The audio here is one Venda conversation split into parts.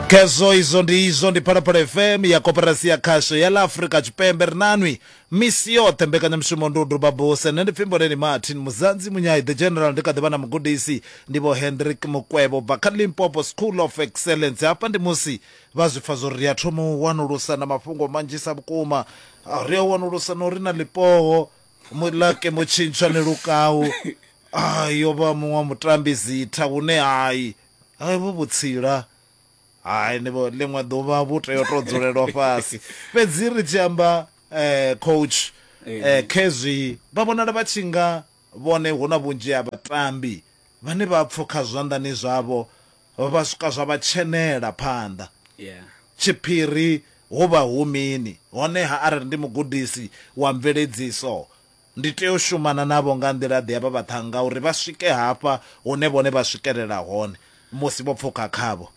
khezwo izwo ndi izwo ndi phalaphala fm ya koperasi ya khasho ya la afrika tshipembe ri nanwi misi yoṱhe mbekanyamushumo ndi u duba buse nṋe ndi pfimboleni martin muzanzi munyayi the general ndi kha ḓivha na mugudisi ndi vho hendrik mukwevho bva kha limpopo school of excellence hafha ndi musi vha zwi pfa zwo ri a thoma u wanulusa na mafhungo manzhisa vhukuma Ah, ri a wanulusa na uri na lipoho Mulaki Mutshintshwa Nilukau I yo vha muṅwe wa mutambi zitha vhune hai hai vhu vhutsila hai ni vho ḽiṅwe ḓuvha vhu tea u to dzulelwa fhasi fhedzi ri tshi amba coach khezwi vha vhonala vha tshi nga vhone hu na vhunzhi ha vhatambi vhane vha pfukha zwanḓani zwavho Vha swika zwa vha tshenela phanḓa. Tshiphiri hu vha hu mini? Honeha arali ndi mugudisi wa mveledziso, ndi tea u shumana navho nga nḓila-ḓe ya vha vhaṱhannga uri vha swike hafha hune vhone vha swikelela hone musi vho pfuka khavho?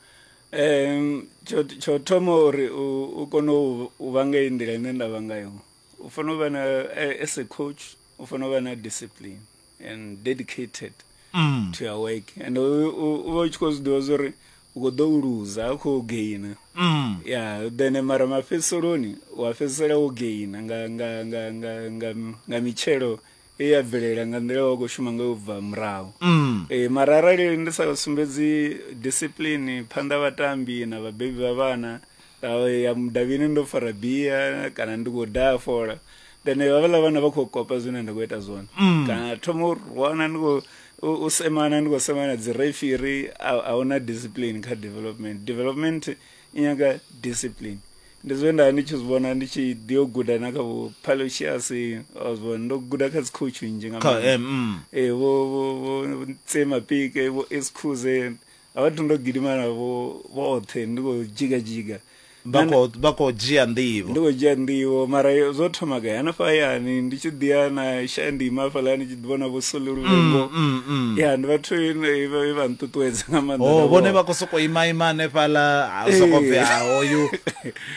Tsho, tsho thoma uri u, u kone u, u vha nga iyi nḓila ine nda vha ngayo, u fanela u vha na, as a coach, u fanela u vha na discipline. and dedicated mm. to your work and u vha u tshi khou zwi ḓivha zwori u khou ḓo u luza a khou gaina mm. ya then mara mafhedziseloni u a fhedzisela wo gaina nga, nga, nga, nga, nga, nga mitshelo e ya bvelela nga nḓila wa khou shuma nga u bva murahu mm. e, mara arali ndi sa sumbedzi discipline phanḓa vhatambi na vhabebi vha vhana ya mudavhini ndo fara bia kana ndi khou daha fola then havhaḽa vhana vha khou kopa zwine nda khou ita zwone mm. kana thoma u rwana ndi khou u semana ndi khou semana dzi refiri a huna discipline kha development development i nyaga discipline ndi zwe nda ndi tshi zwi vhona ndi tshi ḓi yo guda na kha vho palocious ozwo ndo guda kha dzikhoutshu nnzhi nga maanḓa mm. eh, vho tsema pike vho excuse A vha thu ndo gidima navho vhoṱhe ndi khou dzhiga dzhiga. Vha khou vha khou dzhia nḓivho. Ndi khou dzhia nḓivho mara zwo thoma gai hanefha hayani ndi tshi ḓi ya na shaya ndi ima hafhaḽa ndi tshi ḓi vhona vho soli luvhengo. Ya ndi vhathu vhe vha nṱuṱuwedza nga maanḓa. Oh vhone vha khou sokou ima ima hanefhaḽa ha u sokou pfhi ha hoyu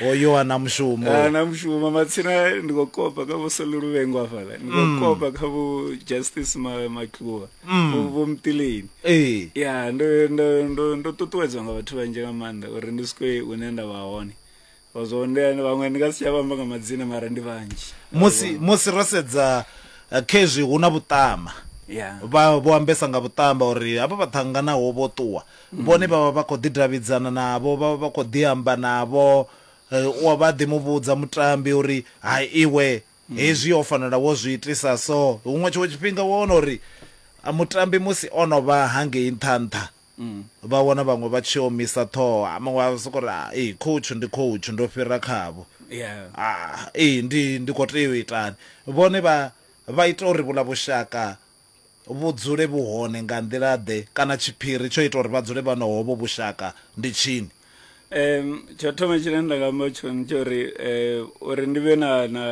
hoyu ana mushumo. Ana mushumo matsina ndi khou kopa kha vho soli luvhengo hafhaḽa. Ndi khou kopa kha vho Justice Matluvha. mm. vho vho mtileni eh ya ndo ndo ndo ndo ṱuṱuwedzwa nga vhathu vhanzhi nga maanḓa uri ndi swike hune nda vha hone vha zwo ndi vhaṅwe ndi nga si tsha vhamba nga madzina mara ndi vhanzhi musi musi ro sedza eh, khezwi hu na vhuṱama Yeah. vha vho ambesa nga vhuṱamba uri hafha vha ṱhanganaho vho ṱuwa mm. vhone vha vha vha khou ḓidavhidzana navho vha vha vha khou ḓiamba navho eh, u wa vha ḓi mu vhudza mutambi uri ha iwe Hezwi ho fanela wo zwi itisa so. Huṅwe tshiṅwe tshifhinga wa wana uri mutambi musi o no vha hangei nṱha nṱha vha wana vhaṅwe vha tshi omisa ṱhoho, muṅwe a sokou ri ee coach ndi coach ndo fhira khavho, ee ndi ndi khou tea u itani. Vhone vha vha ita uri vhuḽa vhushaka vhu dzule vhu hone nga nḓila-ḓe kana tshiphiri tsho ita uri vha dzule vha na hovho vhushaka ndi tshini? Tsho u thoma tshine nda nga amba tshone ndi tsha uri uri ndi vhe na na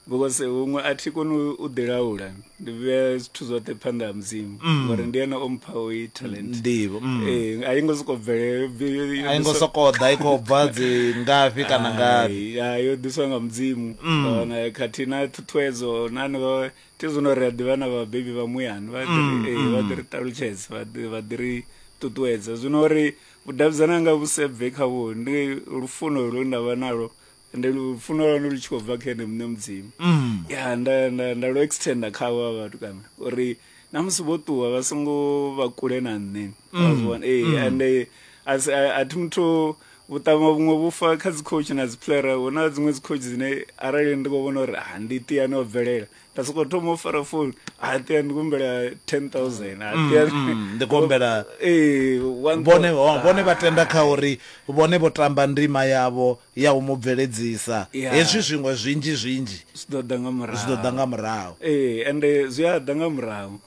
because huṅwe a thi koni u ḓi laula ndi vhea zwithu zwoṱhe phanḓa ha Mudzimu ngori ndi ene o mpha u i talent Ndivho, mm. ee a yi ngo sokou bvelela A i ngo sokou ḓa i khou bva dzi ngafhi kana ngafhi. Hai, hai, yo ḓiswa nga mudzimu Kana khathihi na ṱhuṱhuwedzo na hanevha ti zwino ri a ḓivha na vhabebi vha muyani vha ḓiri mm, eh, mm. vha ḓiri ṱalutshedza vha ḓiri ṱuṱuwedza zwino uri vhudavhidzana nga vhusebve khavho ndi lufuno lwe nda vha nalo ndi lufuno lwanu lu tshi khou bva kha ene muṋe mudzimu mm. ya nda nda nda lu extenda khavho vha vhathu kana uri na musi vho ṱuwa vha songo vha kule na nṋe mm. ee mm. ande a thi muthu vhuṱama vhuṅwe vhufa kha dzi coach na dzi player hu na dziṅwe dzi coach dzine arali ndi khou vhona uri ha ah, ndi ṱiyani o bvelela nda sokou thoma u fara phone ha ah, ṱiyani ndi kumbela ten thousand ha ah, mm, ṱiyani mm, ndi kumbela ee vhone vhone vha tenda kha uri vhone vho tamba ndima yavho ya u mu bveledzisa hezwi zwiṅwe zwinzhi zwinzhi zwi ḓo ḓa nga murahu zwi ḓo ḓa nga murahu ee ende zwi a ḓa nga murahu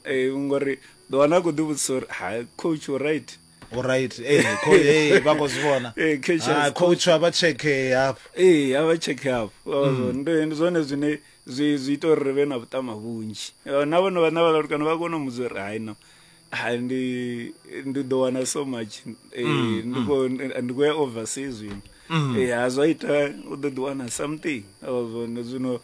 ee ngori ḓo wana a khou ḓivhudzisa uri ha coach right Alright, eh, kho eh vha khou zwi vhona. Eh, cash Ah, has coach vha vha check eh, hafho. ee a vha check up Mm. ndi ndi zwone zwine zwi zwi ita uri ri vhe na vhuṱama vhunzhi Eh, na vhone vhana vha latukana vha kona u mudza uri hai no hai ndi ndi ḓo wana so much eh, Mm, ndi mm. khou- ndi- ndi khou ya overseas zwino Mm. Eh, ha zwa ita u ḓo ḓi wana something Oh, zwone zwino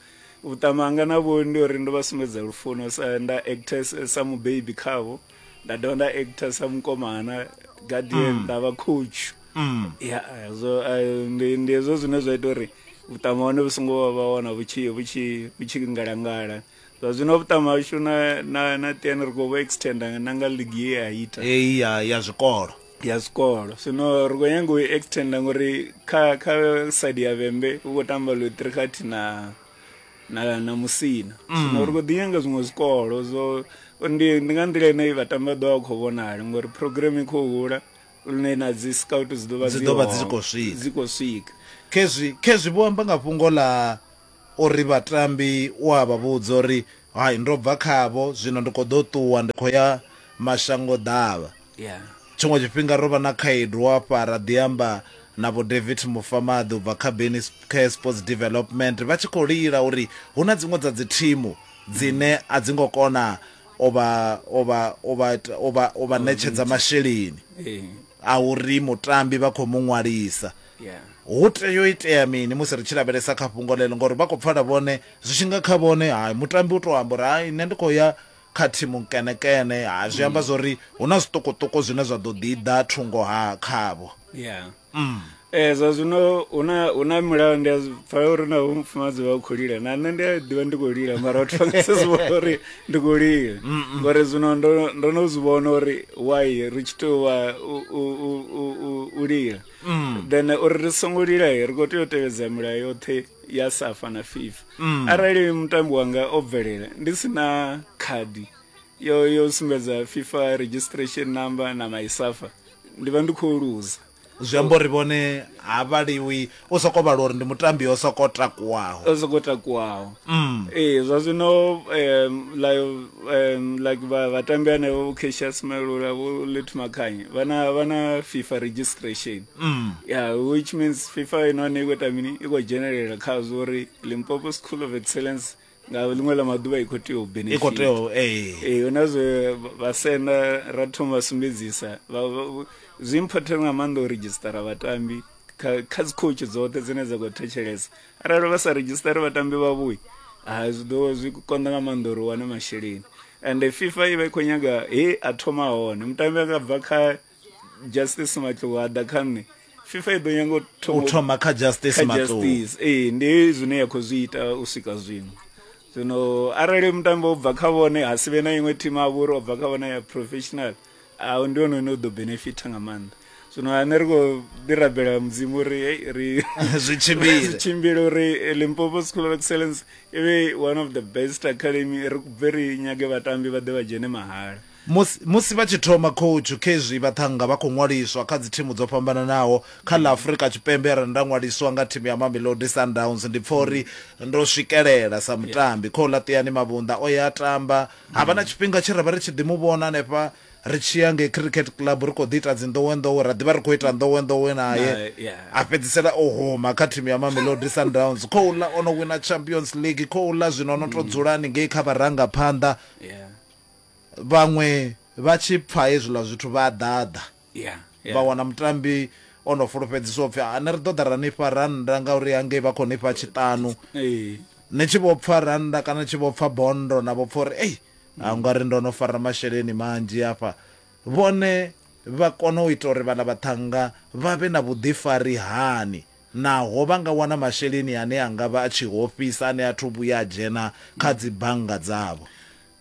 vhuṱama hanga navho ndi uri ndo vha sumbedza lufuno sa nda actes sa mubebi khavho nda dovha nda actor sa mukomana guardian mm. nda vha coach mm. ya so eh, ndi ndi hezwo zwine zwa ita uri vhuṱama hone vhu songo vha vha wana vhu tshi vhu tshi vhu tshi ngalangala zwa zwino vhuṱama hashu na na na tiani ri khou vhu extenda na nga ligi ye ya ita eyi ya ya zwikolo ya zwikolo zwino ri khou nyanga u extenda ngori kha kha side ya vhembe hu khou tamba luthrikhathi na na na musina mm. zwino ri khou ḓi nyanga zwiṅwe zwikolo zwo ndi ndi nga nḓila ine vhatambi vha ḓo vha khou vhonala ngori program i khou hula lune na dzi scout dzi ḓo vha dzi ḓo vha dzi khou swika dzi khou swika khezwi khezwi vho amba nga fhungo ḽa uri vhatambi u a vha vhudza uri hai ndo bva khavho zwino ndi khou ḓo ṱuwa ndi khou ya mashango ḓavha Tshiṅwe tshifhinga ro vha na khaedu hafha ra ḓi amba na vho David Mufamaḓi u bva kha Beni Care Sports Development vha tshi khou lila uri hu na dziṅwe dza dzithimu dzine a dzi ngo kona u vha u vha u vha u vha u vha ṋetshedza masheleni a uri mutambi vha khou mu ṅwalisa hu tea u itea mini musi ri tshi lavhelesa kha fhungo ḽeḽo ngori vha khou pfala vhone zwi tshi nga kha vhone hai mutambi u tou amba uri hai nṋe ndi khou ya kha thimu nkenekene ha zwi amba zwori hu na zwiṱukuṱuku zwine zwa ḓo ḓi ḓa thungo ha khavho ya mm. eh zwa zwino una una mulayo ndi pfa uri na mufumadzi wa khou lila na nṋe ndi a ḓivha ndi khou lila mara vhathu vha nga si zwi vhona uri ndi khou lila ngori zwino ndo ndo no zwi vhona uri why ri tshi tou vha u lila mm. then uri ri songo lila ri khou tea u tevhedza milayo yoṱhe ya safa na fifa mm. arali mutambi wanga o bvelela ndi si na khadi yo yo sumbedza fifa registration number na my safa ndi vha ndi khou luza zwi amba uri vhone ha vhaliwi u soko vhala uri ndi mutambi o soko takuwaho o soko takuwaho mm. ee zwa zwino um, like, um, like vhatambi anevho vho casia smelula vho let makhanyi vha na fifa registration Mm. Yeah, which means FIFA ino ne ikho tamini ikho general kha zori Limpopo School of Excellence nga ḽiṅwe ḽa maḓuvha i khou tea u benefit i khou tea ee eh. eh, huna zwe vhasenda ra thoma vha sumbedzisa zwi important nga maanḓa u redzhisitara vhatambi kha dzi coach dzoṱhe dzine dza khou thetshelesa arali vha sa redzhisitare vhatambi vhavhuyi ha zwi ḓo zwi konḓa nga maanḓa uri u wane masheleni and fifa i vha i khou nyaga he a thoma hone mutambi a nga bva kha justice matluwada kha nṋe fifa i ḓo nyanga u thoma kha justice matluwada ee ndi zwine ya khou zwi ita u swika zwino zwino arali mutambo u bva kha vhone ha si vhe na iṅwe thimu a vhori o bva kha vhone ya professional ahu ndi hone une u ḓo benefita nga maanḓa zwino ane ri khou ḓi rabela mudzimu uri ri zwi tshimbile uri limpopo school of excellence i vhe one of the best academy ri kubve ri nyage vhatambi vha ḓe vha dzhene mahala Musi, musi vha tshi thoma khoutshu, khezwi vhaṱhannga vha khou ṅwaliswa kha dzithimu dzo fhambananaho. Kha ḽa Afrika Tshipembe arali nda ṅwaliswa nga thimu ya Mamelodi Sundowns ndi pfa uri ndo swikelela sa mutambi. Khou laṱiani Mavhunḓa o ya a tamba, ha vha na tshifhinga tshe ra vha ri tshi ḓi mu vhona hanefha ri tshi ya ngei Cricket Club ri khou ḓi ita dzi nḓowenḓowe, ra ḓi vha ri khou ita nḓowenḓowe nae, a fhedzisela o huma kha thimu ya Mamelodi Sundowns. Khouḽa o no wina Champions League, khouḽa zwino o no tou dzula haningei kha vharangaphanḓa. vhaṅwe vha tshi pfa hezwiḽa zwithu vha a ḓaḓa yeah, yeah. vha wana mutambi o no fulufhedziswa upfhi ane ri ḓo ḓa ra nifha rannda ngauri hangei vha khou nifha tshiṱanu ni tshi vho pfa rannda kana ni tshi vho pfa bondo na vho pfa uri ei a nga ri ndo no fara masheleni manzhi hafha vhone vha kona u ita uri vhala vhaṱhanga vha vhe na vhuḓifari hani naho vha nga wana masheleni ane a nga vha a tshi hofhisa ane a thu vhuya a dzhena kha dzi bannga dzavho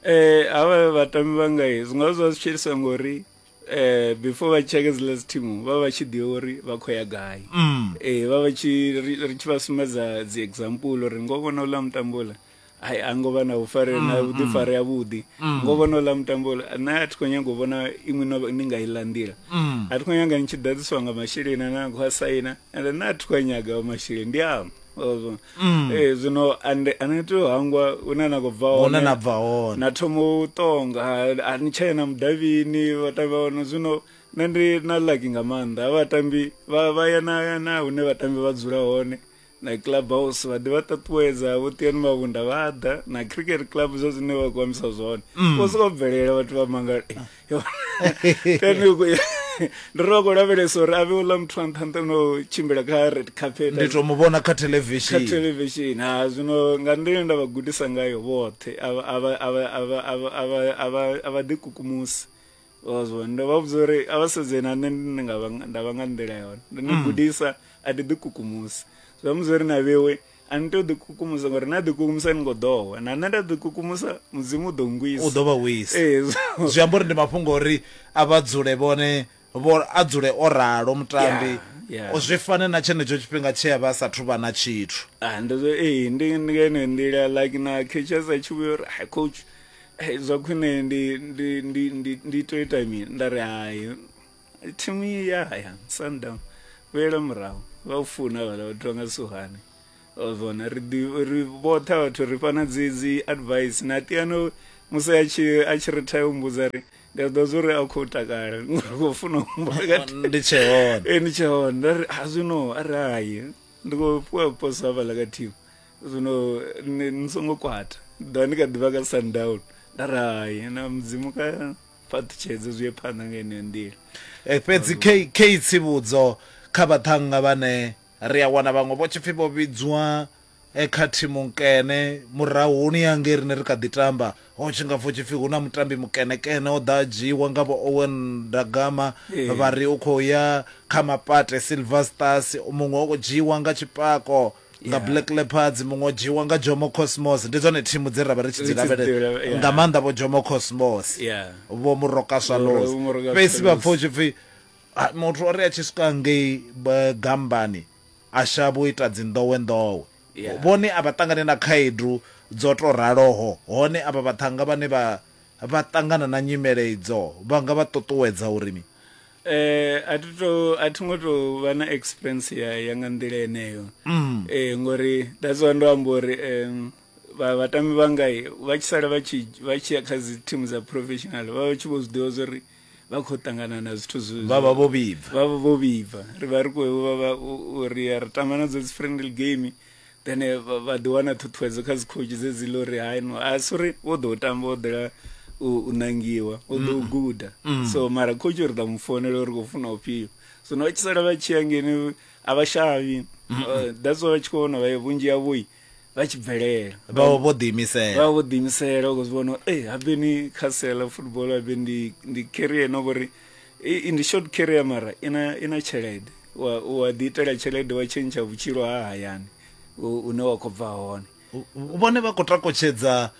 eh ava vatambi vangai zwi nga zwa zwi tshelisa ngori eh before vha tsheke dzi last team vha vha tshi ḓivha uri vha khou ya gai mm. eh vha vha tshi ri tshi vha sumbedza dzi example uri ngo vhona uḽa mutambo uḽa ai a ngo vha na vhufare na mm, vhuḓifare mm. vhudi mm. ngo vhona uḽa mutambo uḽa nṋe a thi khou nyanga u vhona iṅwe no ni nga iḽa nḓila a thi khou nyanga ni tshi ḓadziswa nga masheleni ane a khou a saina ende nṋe a thi khou a nyaga masheleni ndi amba mm. ee eh, zwino ande ane tea u hangwa hune na khou bva hone na bva hone na thoma u ṱonga a ni tshee na mudavhini vhatambi vha hone zwino nṋe ndi na laki nga maanḓa a vhatambi vha ya na ya na hune vhatambi vha dzula hone na club house vha ḓi vha ṱaṱuwedza vho tiyani mavhunda vha ḓa na cricket club zwa zwine vha khou ambisa zwone mm. vho sokou bvelela vhathu vha mangala ndo ro khou lavhelesa uri a vhe uḽa muthu a nṱha nṱha no tshimbila kha red carpet ndi to mu vhona kha television kha television ha zwino nga nḓila nda vha gudisa ngayo vhoṱhe a vha ḓikukumusi ozwo ndo vha vhudza uri a vha sedze na nṋe ndi nga nda vha nga nḓila yone ndo ni mm. gudisa a ndi ḓikukumusi zwa mudza uri na vhewe A ni tei u ḓikukumusa ngori na ḓikukumusa ni ngo ḓo wa. Na nṋe nda ḓikukumusa Mudzimu u ḓo ngwisa. U ḓo vha wisa. Ee zwo. Zwi amba uri ndi mafhungo a uri a vha dzule vhone vho a dzule o ralo mutambi Yeah, yeah. zwi fane na tshenetsho tshifhinga tshe a vha a sathu vha na tshithu. Ah ndi zwo ee ndi ndi nga yeneyo nḓila like na Catchers a tshi vhuya uri hai coach eh, zwa khwine ndi ndi ndi ndi ndi tea u ita mini nda ri hai. thimu ya haya sundown vhuyela murahu vha u funa vhala vhathu vha nga suhane vona ri ḓi- ri vhoṱhe vhathu ri fana dzi dzi advice na tiano musi a tshi a tshi retire u mbudza ri ndi a ḓo zwa uri a khou takala ngori u khou funa u humbula nga thi- ndi tshe hone Eh, ndi tshe hone nda ri a zwino a ri hayi ndi khou fhiwa poso hafhaḽa ka thimu zwino ni ni songo kwata ḓa ni kha ḓivha ka sundown nda ri hayi na mudzimu ka fhaṱutshedze zwi ye phanḓa nga yeneyo nḓila eh, fhedzi kei tsivhudzo kha vhaṱhannga vhane ri a wana vhaṅwe vho tshipfi vho vhidzwa eh, kha thimu nkene murahuni ya ngei rine ri kha ḓi tamba ho tshi nga pfo tshipfi hu na mutambi mukenekene o ḓa a dzhiiwa nga vho owen ndagama eh. vha ri u khou ya kha mapate silver stars muṅwe o dzhiiwa nga tshipako nga Yeah. black leopards muṅwe o dzhiwa nga jomo cosmos ndi dzone thimu dze ra vha ri tshi dzi Ri tshi dzi lavhelela lavhelela, yeah. nga maanḓa vho jomo cosmos Yeah. vho muroka swallows Vho Muroka fhedzi vha Swallows. pfa u tshi pfi "Ah, muthu o ri a tshi swika ngei ba- gambani a shavha u ita dzinḓowenḓowe Yeah. vhone a vha ṱangane na khaedu dzo to raloho hone avha vhaṱhanga vhane vha vha ṱangana na nyimele idzo vha nga vha ṱuṱuwedza uri ni eh a thi to a thi ngo to vha na experience ya ya nga nḓila eneyo mm. eh ngori that's why ndo amba uri um vha vhatambi vhanga vha tshi sala vha tshi vha tshi ya kha dzi team dza professional vha tshi vho zwiḓivha zori vha khou ṱangana na zwithu zwo vha vha vho vhibva vha vha vho vhibva ri vha ri khou vha vha uri ya ri tamba na dzo dzi friendly game then eh, vha ḓi wana ṱhuṱhuwedzo kha dzikhotshu dzedzi ḽo ri haino a si uri wo ḓo u tamba o ḓela u nangiwa o ḓo u mm. guda mm. so mara khotshi uri ḓa mu founela uri khou funa ufhio so no vha tshi sala vha tshi ya ngeni a vha shavhi mm. uh, that's why vha tshi khou vhona vha vhunzhi yavhoi vha tshi bvelela vha vho ḓiimisela vha vho ḓiimisela u khou zwi vhona e eh, habe ni kha sela football habe ndi ndi carrier no vhori I- ndi short carrier mara ina ina tshelede wa wa ḓi itela tshelede wa tshentsha vhutshilo ha hayani u- une wa khou bva hone U- vhone vha khou takotshedza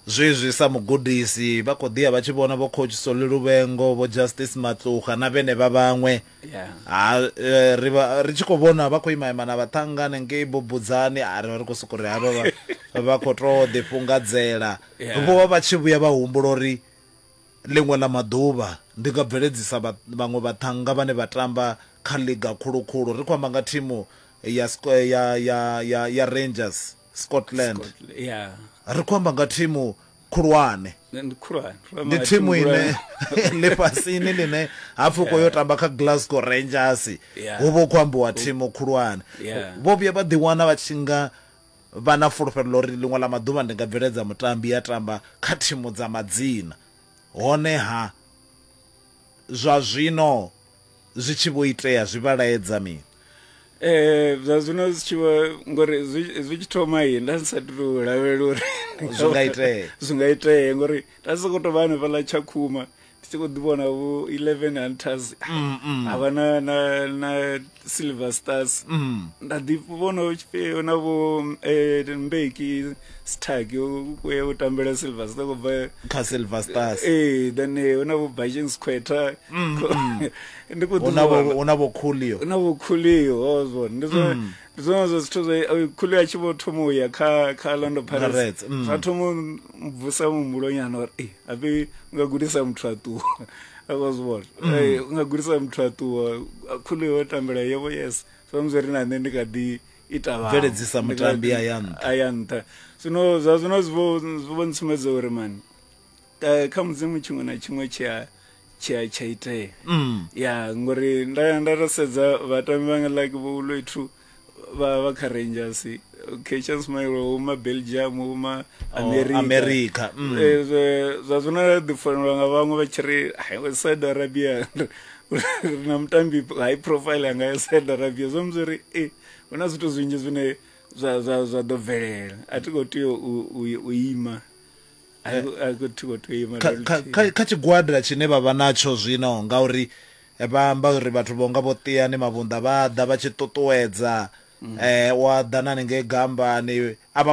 zwezwi sa mugudisi vha khou ḓiya vha tshi vhona vho coach soli luvhengo vho justice matluha na vhenevha vhaṅwe Yeah. ha eh, ri vha- ri tshi khou vhona vha khou ima ima na vhaṱhangane ngei bubudzani a ri vha ri khou sokou ri havha vha- vha khou tou ḓifhungadzela Yeah. vho vha vha tshi vhuya vha humbula uri Ḽiṅwe ḽa maḓuvha, ndi nga bveledzisa vhaṅwe vhaṱhannga vhane vha tamba kha ḽiga khulu-khulu. Ri khou amba nga thimu ya ya ya ya ya Rangers Scotland. Ri khou amba nga thimu khulwane. Ndi thimu ine ḽifhasini ḽine ha pfi u khou yo tamba kha Glasgow Rangers hu vha hu khou ambiwa thimu khulwane. Vho vhuya vha ḓiwana vha tshi nga vha na fulufhelo ḽa uri ḽiṅwe ḽa maḓuvha ndi nga bveledza mutambi a tamba kha thimu dza madzina. Honeha, zwa zwino zwi tshi vho itea zwi vha laedza mini? Eh zwa zwino zwi tshi vha ngori zwi tshi thoma yi nda sa tu lavhelela uri zwi nga itea zwi nga itea ngori nda soko to vha hanefhaḽa Tshakhuma ndi tshi khou ḓi vhona vho 11 hunters mm, mm. havha na na na silver stars mm. nda ḓi vhona tshifhio na vho eh, mbeki stark ku ya u tambela silver stars ku bva kha silver stars eh then eh, ona vho bajin squatter ndi ku ḓi vhona ona vho khulio ona vho khulio hozwo ndi zwo ndi zwone zwa zwithu zwe eh, khuli a tshi vho thoma u ya kha kha lando Pirates, pirates mm. zwa thoma u bvusa muhumbulonyana uri "Eh, hape u nga gudisa muthu a ṱuwa akwa zwi vhona Mm. Eh, u nga gudisa muthu a ṱuwa A- khuli yo tambela yevo yes samusi ri na nṋe ndi kha ḓi ita vhaṅwe. Bveledzisa Ndi kha mutambi ḓi- a ya nṱha. a ya nṱha zwino zwa zwino zwi vho- zwi vho ntsumedza uri mani Eh, kha mudzimu tshiṅwe na tshiṅwe tshi a tshi a tsha itea Mm. ya ngori nda ya nda to sedza vhatambi vhanga like vho uloithu vha vha kha rangers kechans mailo huma belgium huma america, Oh, America, mm. Eh, zwa- zwa zwino ra ḓi fanelwa nga vhaṅwe vha tshi ri "Hai, we saudi arabia ri na mutambi high profile anga ya saudi arabia zwo mudzi uri e hu na zwithu zwinzhi zwine zwa zwa zwa ḓo bvelela a thi khou tea u- u u ima kha tshigwada tshine vha vha natsho zwino ngauri vha amba uri vhathu vho nga vho Tiyani Mavhunḓa vha ḓa vha tshi ṱuṱuwedza um u a ḓa na haningei gambani a vha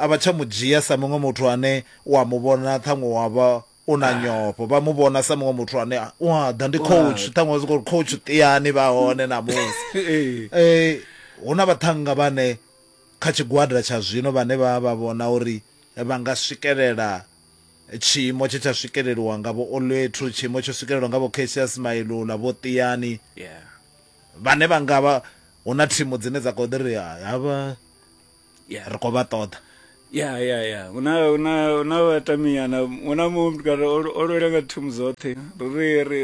a vha tsha mu dzhia sa muṅwe muthu ane u a mu vhona ṱhaṅwe wa vha u na nyofho vha mu vhona sa muṅwe muthu ane u a ḓa ndi coach ṱhaṅwe zwi khou coach Tiyani vha hone ṋamusi um hu na vhaṱhannga vhane kha tshigwada tsha zwino vhane vha vha vhona uri vha nga swikelela tshiimo tshe tsha swikeleliwa nga vho Olethu, tshiimo tsho swikelelwa nga vho Cassius Mailula, vho Tiyani, vhane vha nga vha hu na thimu dzine dza khou ḓi ri havha ri khou vha ṱoḓa. ya ya ya hu na hu na hu na vhataminyana hu na muṅwe mutukana o lwela nga thimu dzoṱhe ro ri ri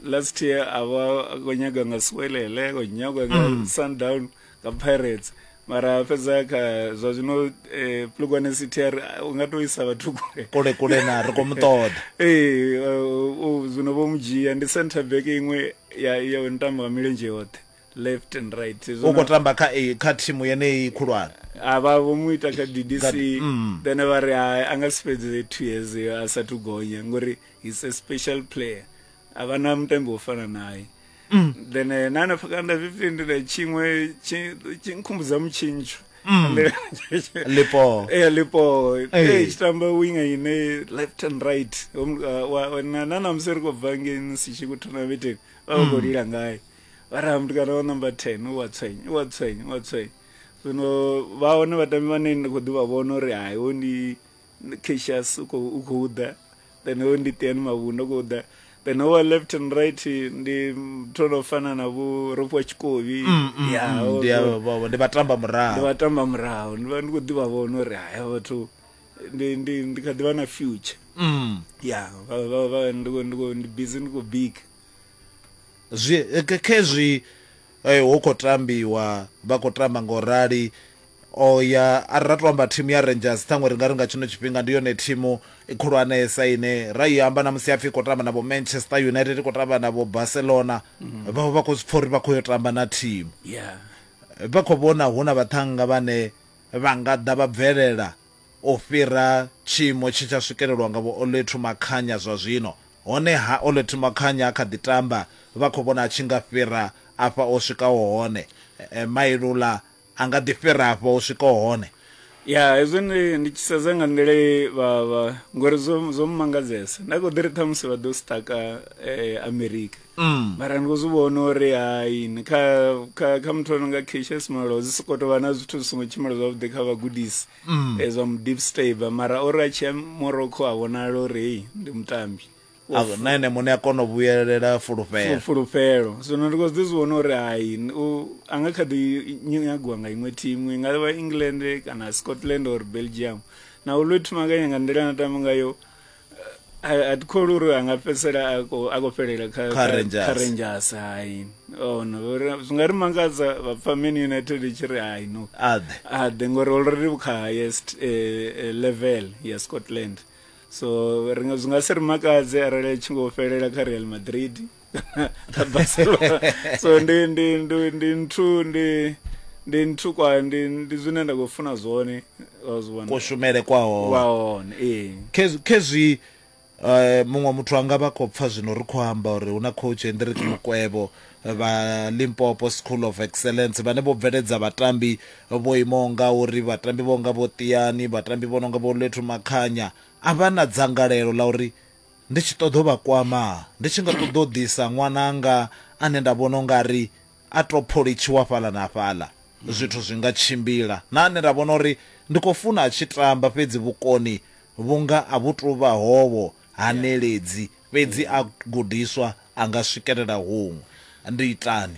last year a vha khou nyaga nga swelele khou nyagwa nga mm. sundown mm. nga pirates mara fhedza kha zwa zwino eh, plugwane city a ri- u nga to isa vhathu kule kule kule na ri khou mu ṱoḓa ee uh, uh, zwino vho mu dzhia ndi center back iṅwe ya ya u ntambo wa milenzhe yoṱhe left and right u Zwino- khou tamba kha eh, kha thimu yeneyi khulwane a vha vho mu ita kha ddc Kha- mm. then vha ri hai a nga si fhedze two years yo a sathu gonya ngori he's a special player a vha na mutambi wo fana naye mm. then eh, na hanefha kana nda zwifhindula tshiṅwe tshi nkhumbudza mutshintsho mm. lipo eh lipo eh tshitamba winga ine left and right uh, na na na museri ko bangeni si tshi ku thona vete ba go mm. lila ngaye ba ra mntu kana wa number 10 wa tswenye wa tswenye wa tswenye zwino vha hone vhatambi vhane ndi khou ḓi vha vhona uri hayi wo ndi Cassius u khou u khou ḓa then hoyu ndi Tiani Mavhundu u khou ḓa then howa left and right ndi thono fana na vho Ropo Tshikovhi mm, mm, ya mm, ndi avho ndi vhatamba murahu ndi vhatamba murahu ndi vha ndi khou ḓivha vhona uri haya vhathu ndi ndi ndi kha ḓivha na future mm ya vha vha vha ndi ndi busy ndi khou big zwi eh, khezwi Ee, hu khou tambiwa, vha khou tamba nga u rali. O ya, a ri ra tou amba thimu ya Rangers, ṱhaṅwe ri nga ri nga tshino tshifhinga ndi yone thimu khulwanesa ine ra i amba na musi ha pfi i khou tamba na vho Manchester United, i khou tamba na vho Barcelona, vha vha vha khou zwi pfa uri vha khou yo tamba na thimu. Vha khou vhona hu na vhaṱhannga vhane vha nga ḓa vha bvelela u fhira tshiimo tshe tsha swikelelwa nga Vho Olwethu Makhanya zwa zwino. Honeha, Olwethu Makhanya a kha ḓi tamba, vha khou vhona a tshi nga fhira afha o swikaho hone. Mailula a nga ḓi fhira afha o swikaho hone? Ya, hezwi ndi, ndi tshi sedza nga nḓila ye vha, vha, ngori zwo, zwo mmangadzesa. Nda khou ḓi ri ṱhamusi vha ḓo sṱaka Amerika. Mm. mara ndi khou zwi vhona uri hai ni kha kha kha muthu ano nga cases malo zwi sokou tou vha na zwithu zwi songo tshimbila zwavhuḓi kha vhagudisi Mm. eh, zwa mu deep staber mara ori a tshiya morocco a vhonala uri hei ndi mutambi A- na ene muṋe a kona u vhuyelela fulufhela Fu- fulufhelo zwino ndi khou zwi ḓi zwi vhona uri hai n- u- a nga kha ḓi nyi- nyagiwa nga iṅwe thimu i nga vha england kana scotland or belgium na u lwe thumakanya nga nḓila na tamba ngayo a thi kholi uri a nga fhedzisela a khou fhelela kha rangers hai ono zwi nga ri mangadza vhapfa man united i tshi ri hai no a ḓe ngori already kha highest eh, eh, level ya scotland so zwi nga si ri makadze arali a tshi ngo fhelela kha real madrid so ndi ndi ndi ndi nthu ndi ndi nthu kwa ndi ndi zwine nda khou funa zwone wa zwi vhona kushumele kwa hone wa hone ee Khez- khezwi eh, muṅwe muthu anga vha khou pfa zwino ri khou amba uri hu na coach hendrik mukwevho vha limpopo school of excellence vhane vho bveledza vhatambi vho imaho nga uri vhatambi vho nga vho tiani vhatambi vho no nga vho lethu makhanya a vha na dzangalelo la uri ndi tshi ṱoḓa u vha kwama, ndi tshi nga ṱoḓa u ḓisa ṅwananga ane nda vhona u nga ri a tou pholitshiwa fhaḽa na fhaḽa, zwithu zwi nga tshimbila, na ane nda vhona uri ndi khou funa a tshi tamba fhedzi vhukoni vhu nga a vhu tou vha hovho, ha neledzi, fhedzi a gudiswa a nga swikelela huṅwe. Ndi itani?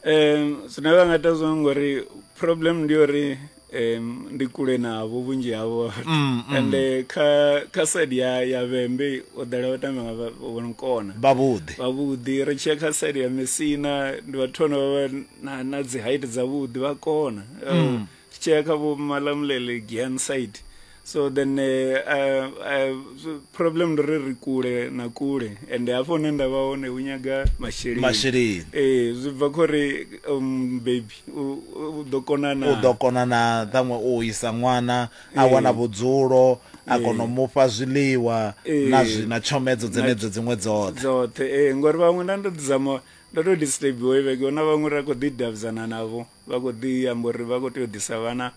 um zwine vha nga ita zwone ngori problem ndi uri um ndi kule navho vhunzhi havho mm, mm. ende kha kha side ya ya vhembe o ḓala vha tamba nga vhono kona vhavhuḓi vhavhuḓi ri tshiya kha side ya mesina ndi vhathu vhano vha na na dzi height dza vhuḓi vha kona mm. tshea kha vho malamulele gian side so then uh, uh, uh, problem ndo ri ri kule na kule and hafho hune nda vha hone hu nyaga masheleni masheleni ee zwi bva kho ri um, baby u ḓo konana u ḓo konana ṱhaṅwe u isa ṅwana a wana vhudzulo a kona u mufha zwiḽiwa na zwi na tshomedzo dzenedzo dziṅwe dzoṱhe dzoṱhe ee ngori vhaṅwe nda ndo ḓizama ndo to disturbiwa ivheke na vhaṅwe ra khou ḓi davhidzana navho Vha khou ḓi amba uri vha khou tea u ḓisa vhana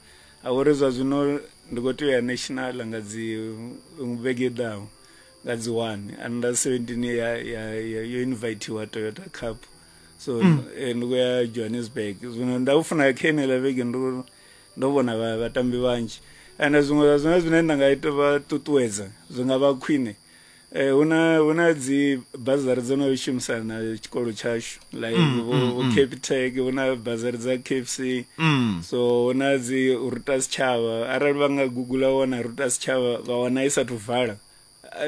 a vhori zwa zwino ndi khou tea u ya national nga dzi vhege i ḓaho nga dzi one under 17 ye ya ya ya- yo invithiwa toyota cup so eh, ndi khou ya johannesburg zwino nda u funa kha enela vhege ndo ndo vhona vha- vhatambi vhanzhi and zwiṅwe zwa zwine zwine nda nga ita vha ṱuṱuwedza zwi nga vha khwine Eh, huna huna dzi bazari dzo no shumisana na tshikolo tshashu like mm, vho mm, mm. capitec huna bazari dza kfc mm. so huna dzi ruta sitshavha arali vha nga googula wana ruta sitshavha vha wana i sathu vala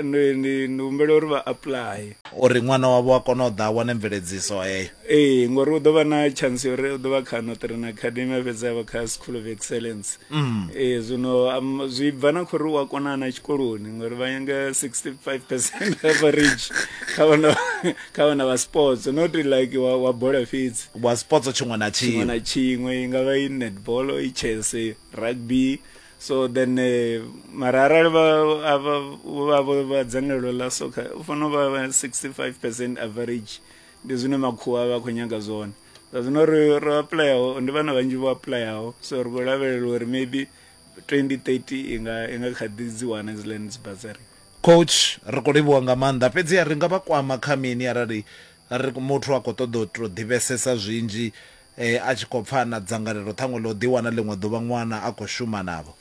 ndi humbela uri vha apply uri ṅwana wavho a kone u ḓa a wane mveledziso heyo ee ngori u ḓo vha na chance uri u ḓo vha kha notrena academy a fhedza vha kha school of excellence mm. e, zwino um, zwi bva na khori u a konana tshikoloni ngori vha nyanga 65 percent average kha vhana kha vhana vha sports not like wa, wa bola fhedzi wa sports tshiṅwe na tshiṅwe na tshiṅwe i nga vha i netball i chess rugby so then eh, mara arali vhavho vha dzangalelo ḽa soccer u fanela u vha 65 percent average ndi zwine makhuwa vha khou nyanga zwone zwa zwino ri ro aplayaho ndi vhana vhanzhi vho aplayaho so ri khou lavhelela uri maybe 2030 i nga i nga kha ḓi dzi wana dzi lands bazari coach ri khou livhuwa nga maanḓa fhedzi ri nga vha kwama kha mini arali ri muthu a khou ṱoḓa u to ḓivhesesa zwinzhi eh, a tshi khou pfa na dzangalelo ṱhaṅwe ḽo ḓi wana ḽiṅwe ḓuvha ṅwana a khou shuma navho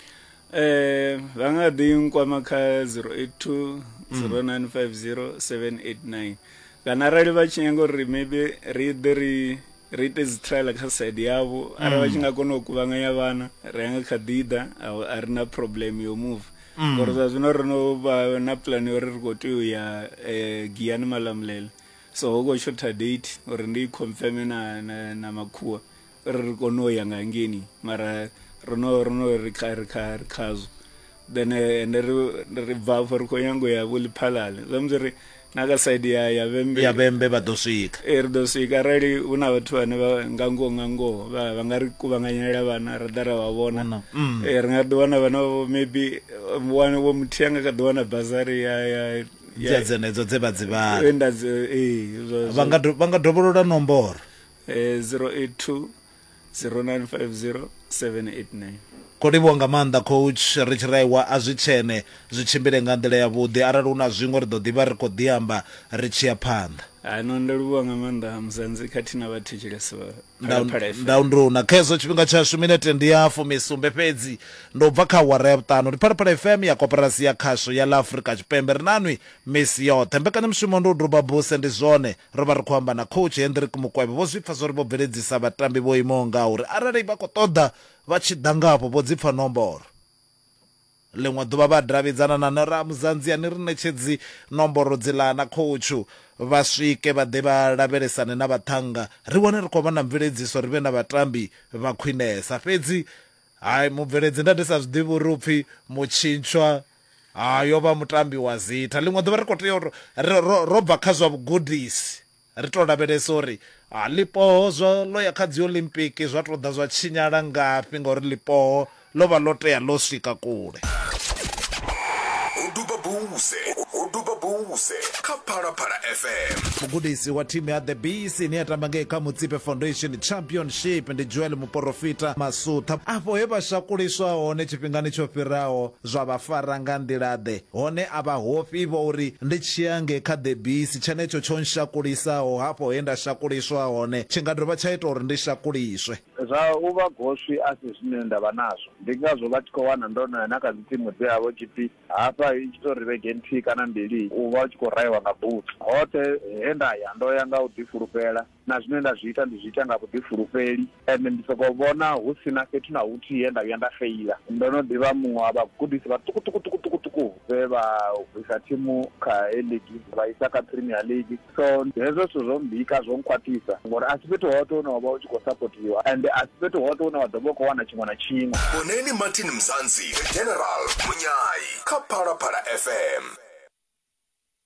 eh vha nga ḓi nkwama kha 082 0950 789 kana arali vha tshi nyanga uri maybe ri ḓe ri ri ite dzi trial kha side yavho arali vha tshi nga kona u kuvhanganya vhana ri anga kha ḓi ḓa a ri na problem yo move mm. ngori zwa zwino ri no vha na plan yo uri ri khou tea u ya eh, giyani malamulela so ho khou shotha date uri ndi confirme na, na, na makhuwa ri ri kone u ya nga hangeini mara ro no ro no ri kha ri kha ri khazwo then eh, ende ri ri bva afho ri khou nyango ya vho liphalale zwa musi ri na kha side ya ya vhembe ya vhembe vha ḓo swika ee ri ḓo swika arali hu na vhathu vhane vha nga ngoho nga ngoho vha vha nga ri kuvhanganyela vhana ra ḓa ra vha vhona Vhona, mm. ee ri nga ḓi wana vhana vho maybe wane vho muthihi a nga kha ḓi wana bazari ya ya dza dzenedzo dze vha dzi vhala vha nga do- vha nga dovholola nomboro eh, 082 0950 789 khou livhuwa nga maanḓa coach ri tshi raiwa a zwi tshene zwi tshimbile nga nḓila yavhuḓi arali hu na zwiṅwe ri ḓo ḓivha ri khou ḓi amba ri tshi ya phanḓa ano ndo livhuwa nga maanḓa musanzi khathihi na vhathetshelesi vha Phalaphala FM. ndaunduna kha hezwo tshifhinga tshashu minete ndi ya fumisumbe fhedzi ndo bva kha awara ya vhuṱanu ndi phalaphala fm ya koporasi ya khasho ya ḽa afurika tshipembe ri nanwi misi yoṱhe mbekanyamushumo ndi u duba buse ndi zwone Ro vha ri khou amba na Coach Hendrick Mukwevho, vho zwi pfa zwo ri vho bveledzisa vhatambi vho imaho ngauri arali vha khou ṱoḓa vha tshi ḓa nga afho vho dzi pfa nomboro. Ḽiṅwe ḓuvha vha davhidzana na nṋe ra ya Muzanzi ya ni ri ṋetshedzi nomboro dziḽa na khoutshu vha swike vha ḓe vha lavhelesane na vhaṱhannga ri wane ri khou vha na mveledziso ri vhe na vhatambi vha khwinesa. Fhedzi hai mubveledzi nda ndi sa zwi ḓivhi uri u pfi mutshintshwa Hai, yo vha mutambi wa zitha. Ḽiṅwe ḓuvha ri khou tea uri ri, ro, ro bva kha zwa vhugudisi, ri tou lavhelesa uri a, ḽipoho zwa, ḽo ya kha Dziolimpiki zwa tou ḓa zwa tshinyala ngafhi, ngauri ḽipoho ḽo vha ḽo tea ḽo swika kule. Ho duba buse, ho duba buse kha Phalaphala FM. Mugudisi wa thimu ya The Bees ine ya tamba ngei kha Mutsipe Foundation Championship ndi Joel Muporofita Masutha. Afho he vha shakuliswa hone tshifhingani tsho fhiraho, Zwa vha fara nga nḓila-ḓe? Hone a vha hofhi vho uri ndi tshia nge kha ḓebisi, tshenetsho tsho nshakulisaho hafho he nda shakuliswa hone tshi nga dovha tsha ita uri ndi shakuliswe. Zwa u vha goswi a si zwine nda vha nazwo. Ndi ngazwo vha tshi khou wana ndo no ya na kha dzitsimu dze ha vha hu tshi pfi hafha i tshi tou ri vhege nthihi kana mbili u vha u tshi khou rahiwa nga butsu. Hoṱhe he nda ya ndo ya nga u ḓifulufhela. na zwine nda zwi ita ndi zwi ita nga vhuḓifulufheli ende ndi sokou vhona hu si na fhethu na huthihi he nda vhuya nda feila. Ndo no ḓi vha muṅwe wa vhagudisi vhaṱukuṱukuṱukuṱuku vhe vha bvisa thimu kha A-League vha isa kha Premier League, so hezwo zwithu zwo mmbika, zwo nkhwaṱhisa ngori a si fhethu hoṱhe hune wa vha u tshi khou sapothiwa ende a si fhethu hoṱhe hune wa ḓo vha u khou wana tshiṅwe na tshiṅwe. Vhoneni Martin Mzansi, The General, Munyai kha Phalaphala FM.